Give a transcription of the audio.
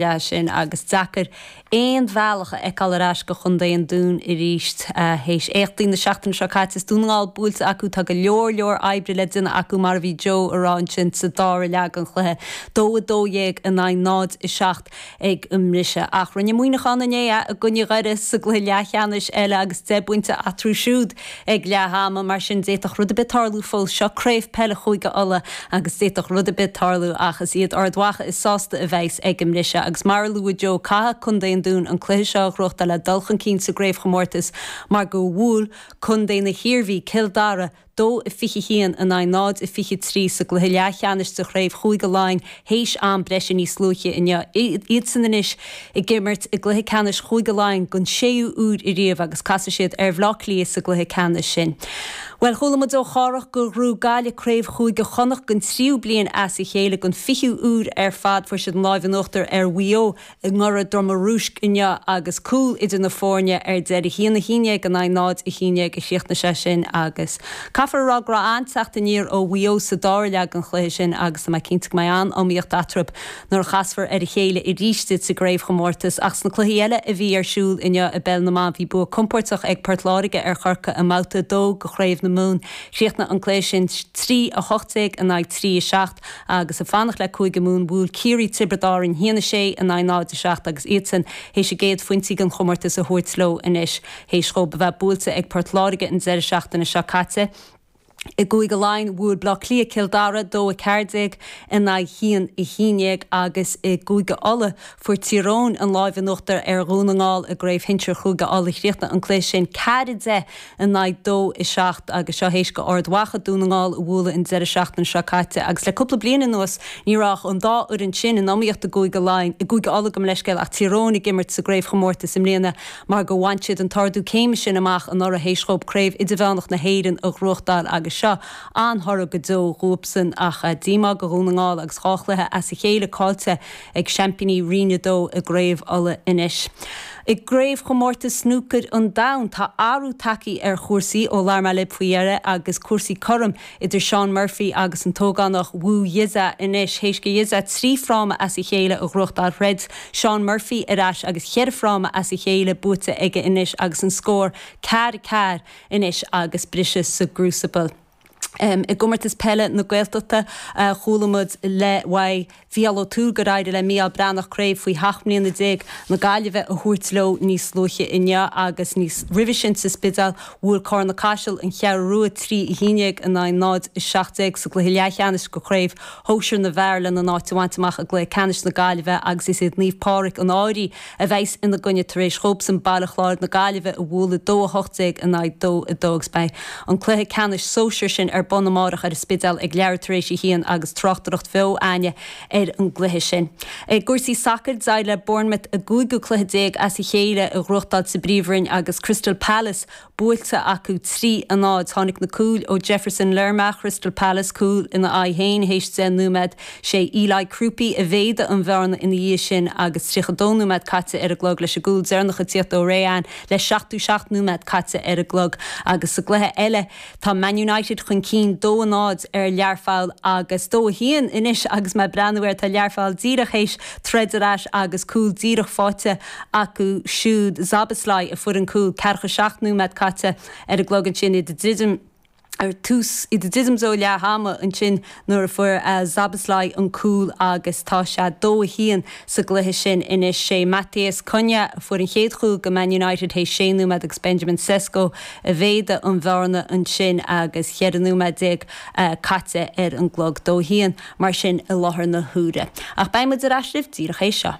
leis sin agus deacair aon bhealach a fheiceáil ar ais go Chontae an Dúin arís théis éachtaí na seachtaine seo caite. Is Dún na nGall buailte acu, tá go leor leor oibre le déanamh acu mar a bhí Joe a rá ansin sa dara leath den chluiche, dó 12 in aghaidh 0, 7 ag an mbriseadh. Ach rinne Muineachán inné é i gcoinne Dhoire sa gcluiche leathcheannais eile agus deich bpointe eatarthu siúd. Ag leath ama, mar sin, d'fhéadfadh rud ar bith tarlú fós. Seo craobh peile Chúige Uladh agus d'fhéadfadh rud ar bith tarlú ach is iad Ard Mhacha is sásta a bheidhs ag an mbriseadh agus mar a luaigh Joe, caithfidh Contae an Dúin an cluiche seo a ghnóthachtáil le dul chun cinn sa gcraobhchomórtas mar gur bhuail Contae na hIarmhí, Cill Dara, 2-21 in aghaidh 0-23 sa gcluiche leathcheannais de Chraobh Chúige Laighean. théis am breise níos luaithe inniu, iadsan anois ag imirt i gcluiche ceannais Chúige Laighean den séú huair ariamh agus casfaidh siad ar Bhleá Cliath sa gcluiche ceannais sin. Bhuel, chuala muid ó Chárthach gur ghnóthaigh Gaillimh craobh Chúige Chonnacht den tríú bliain as a chéile, den fichiú huair ar fad. Fuair siad an láimh in uachtar ar Mhaigh Eo i gCora Droma Rúisc inniu, agus cúl idir na foirne ar deireadh. 1, 11 in aghaidh 0, 11 a chríochnaigh sé sin agus caithfear a rá go raibh an-teacht aniar ó Mhaigh Eo sa dara leath den chluiche sin agus tá mé cinnte go mbeidh an-iomaíocht eatarthu nuair a chasfar ar a chéile arís sa gcraobhchomórtas ach sna cluichí eile a bhí ar siúl inniu i bpeil na mban bhí bua compóirteach ag Port Láirge ar Chorcaigh i mBabhta 2 de Chraobh na Mumhan. Chríochnaigh an cluiche sin 3, 18 in aghaidh 3, 7. agus ag fanacht le Cúige Mumhan, bhuail Ciarraí Tiobraid Árann 1, 6 in aghaidh 0, 7 agus iadsan théis a gcéad phointí den chomórtas a thabhairt leo anois théis dhóibh a bheith buailte ag Port Láirge an deireadh seachtaine seo caite. I gCúige Laighean, bhuail Bleá Cliath Cill Dara 2, 14 in aghaidh 1, 11 agus i gCúige Uladh, fuair Tír Eoghain an láimh in uachtar ar Dhún na nGall i gCraobh Shinsir Chúige Uladh. Chríochnaigh an cluiche sin 4, 10. in aghaidh dó a seacht agus seo théis go Ard Mhacha, Dún na nGall a bhualadh an deireadh seachtaine seo caite agus le cúpla bliain anuas ní raibh ach an dá fhoireann sin in iomaíocht i gCúige Laighean, i gCúige Uladh, gabh mo leithscéal, ach Tír Eoghain ag imirt sa gcraobhchomórtas i mbliana mar gur bhain siad an t-ardú céime sin amach anuraidh théis dhóib Craobh Idirmheánach na hÉireann a ghnóthachtáil agus seo an-toradh go deo dhóibhsan ach díomá go Dhún na nGall agus dhá chluiche as a chéile caillte ag seaimpíní Roinn 2 i gCraobh Uladh anois. I gCraobhchomórtas Snúcair an Domhain, tá athrú tagtha ar chúrsaí ó labhair mé libh faoi dheireadh agus cúrsaí cothrom idir Shaun Murphy agus an t-ógánach Wu Yize anois. Théis go Yize trí fráma as a chéile a ghnóthachtáil, throid Shaun Murphy ar ais agus ceithre fráma as a chéile buaite aige anois agus an scór ceathair, ceathair anois agus briseadh sa gCrucible. I gComórtas Peile na Gaeltachta a chuala muid le haghaidh Mhicheál Ó Tuathail gur éirigh le Micheál Breathnach Craobh faoi sheacht mbliana déag na Gaillimhe a thabhairt leo níos luaithe inniu agus níos roimhe sin sa Spidéal bhuail Cárna Caiseal an Cheathrú Rua trí a haon déag in aghaidh náid a seacht déag sa gcluiche leathcheannais go Craobh Shóisir na bhFear lena n-áit a bhaint amach i gCluiche Ceannais na Gaillimhe agus is iad Naomh Pádraic an Fhairche a bheas ina gcoinne tar éis dhóibhsan Baile Chláir na Gaillimhe a bhualadh, dó 18 in aghaidh dó 2, agus beidh an cluiche ceannais sóisear sin ar bun amáireach ar an Spidéal ag leathuair tar éis a h-aon agus tráchtaireacht bheo againne ar an gcluiche sin. I gcúrsaí sacair, d'éirigh le Bournemouth a gcúigiú cluiche déag as a chéile a ghnóthachtáil sa bPríomhroinn agus Crystal Palace, buailte acu trí a náid. Tháinig na cúil ó Jefferson Lerma, Crystal Palace, cúl ina aghaidh féin théis deich nóiméad. Sé Eli Kroupi a mhéadaigh an bhearna ina dhiaidh sin agus 32 nóiméad caite ar an gclog leis an gcúl deireanach ag tíocht ó Rayan le 77 nóiméad caite ar an gclog. Agus sa gcluiche eile, tá Man United chun cinn dó a náid ar Learpholl agus dó a haon anois agus mé ag breathnú air, tá Learpholl díreach théis troid ar ais agus cúl díreach faighte acu siúd Szoboszlai a fuair an cúl ceathracha seacht nóiméad caite ar an gclog ansin iad ag druidim ar tús iad ag druidim i dtreo leath ama ansin nuair a fuair Szoboszlai an cúl agus tá sé dó a haon sa gcluiche sin anois sé Matheus Cunha a fuair an chéad chúl go Man United théis sé nóiméad agus Benjamin Sesko a mhéadaigh an bhearna ansin agus cheithre nóiméad déag caite ar an gclog dó a haon mar sin i láthair na huaire ach beidh muid ar ais libh díreach théis seo.